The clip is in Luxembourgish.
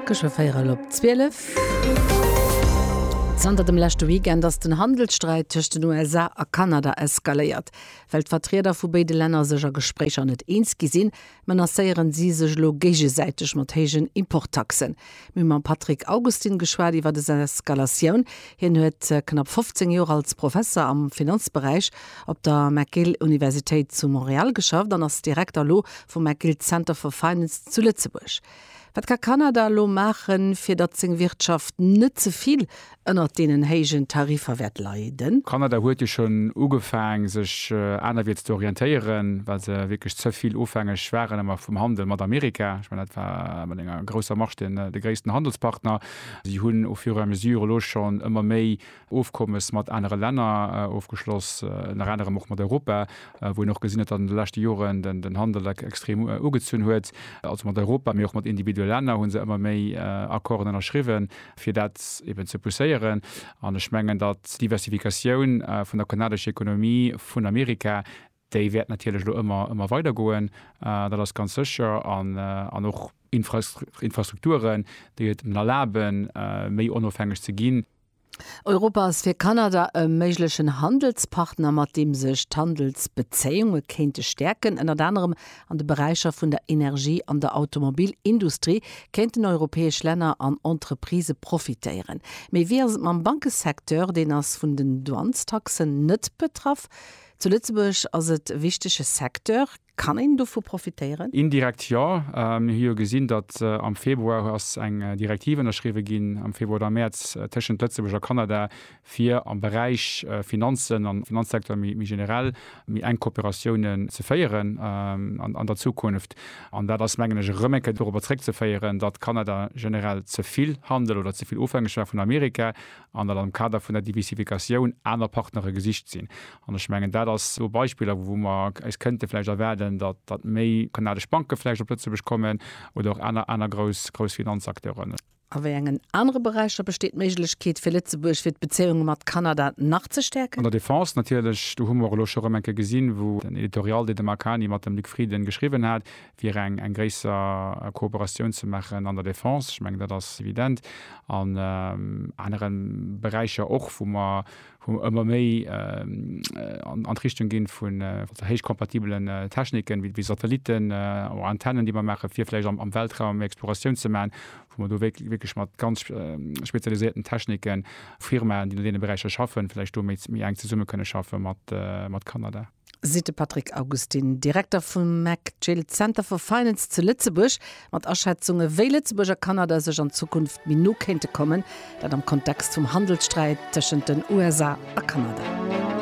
Geschwë 4 ël op 12. Zanter dem leschte Weekend ass den Handelssträit tëscht den USA a Kanada eskaléiert. Well d'Vertrieder vu béide Länner sech a Gespréicher net eens gi sinn, menacéieren si sech elo géigesäiteg mat héijen Importtaxen. Mir hu mam Patrick Augustin geschwat iwwer des Eskalatioun, Hien huet knapp 15 Joer als Professer am Finanzberäich op der McGill-Universitéit zu Montreal geschafft an ass Direkter elo vum McGill Center for Finance zu Lëtzebuerg. Wat ka Kanada elo maachen, fir datt seng Wirtschaft net ze vill ënnert deenen héijen Tariffer wäert leiden? Kanada huet jo schonn ugefaang, sech anerwierts ze orientéieren, well se wierklech ze vill ofhängeg waren ëmmer vum Handel mat Amerika. Ech mengen, dat war ëmmer enger grousser Marsch de gréissten Handelspartner. Si hunn au fur et à mesure elo schonn ëmmer méi Ofkommes mat anere Länner ofgeschloss, ënner anerem och mat Europa, wou een och gesinn huet, datt an de leschte Joren den Handel extrem ugezunn huet. Also mat Europa, mee och mat individuelle Länner hu se ëmmer méi Accorden ënnerschriwwen, fir dat eben ze pousséieren. An ech mengen, datt d'Diversifikatioun vun der kanadescher Ekonomie vun Amerika, Déi wäert natierlech elo ëmmer, ëmmer weider goen, dat ass ganz sécher. An, an och Infrastruk, Infrastrukturen, déi et en erlaben, méi onofhängeg ze ginn. Europa ass fir Kanada e méiglechen Handelspartner, mat deem sech d'Handelsbezéiunge kéinte stäerken. Ënnert anerem an de Beräicher vun der Energie an der Automobilindustrie kéinten europäesch Länner an Entreprisë profitéieren. Mee wéi ass et mam Bankesecteur? Deen ass vun den Douanestaxen net betraff. Zu Lëtzebuerg ass et e wichtege Secteur. Kann een dovu profitéieren? Indirekt jo. Mir hu jo gesinn, datt am Februar ass eng Direktiv ënnerschriwwe ginn, am Februar oder am Mäerz, tëschent Lëtzebuerg a Kanada, fir am Beräich Finanzen an Finanzsecteur méi generell méi enk Kooperatiounen ze féieren an der Zukunft. An dat ass, mengen ech, erëm eng Kéier dorobber zréckzeféieren, datt Kanada generell ze vill Handel oder ze vill ofhängeg war vun Amerika an datt am Kader vun der Diversifikatioun aner Partnere gesicht sinn. An ech mengen, dat ass esou Beispiller, wou mer eis kënnte vläicht erwaarden, datt méi kanadesch Banke vläicht op Lëtzebuerg kommen oder och aner, aner grouss, grouss Finanzacteuren. A wéi engen anere Beräicher besteet d'Méiglechkeet fir Lëtzebuerg, fir d'Bezéiunge mat Kanada nach ze stäerken? An der Defense natierlech. Do hu mer och elo scho erëm eng Kéier gesinn, wou den Editorial, deen de Marc Hany mat dem Luc Frieden geschriwwen hat, fir eng gréisser Kooperatioun ze maachen an der Defense, ech mengen, dat ass evident, an anere Beräicher och, wou mer ëmmer méi an d'Richtung ginn vu héichkompatibelen Techniken, wéi Satellitten oder Antennen, déi mer maachen, fir vläicht am Weltraum méi Exploratioun ze maachen, wou mer do wierklech mat ganz spezialisierten Techniken, Firmaen, déi an deene Beräicher schaffen, vläicht do méi enk zesumme kënne schaffe mat Kanada. seet de Patrick Augustin, Direkter vum McGill Center for Finance zu Lëtzebuerg, mat Aschätzunge wéi Lëtzebuerg a Kanada sech an Zukunft méi no kéinte kommen, dat am Kontext vum Handelssträit tëschent den USA a Kanada.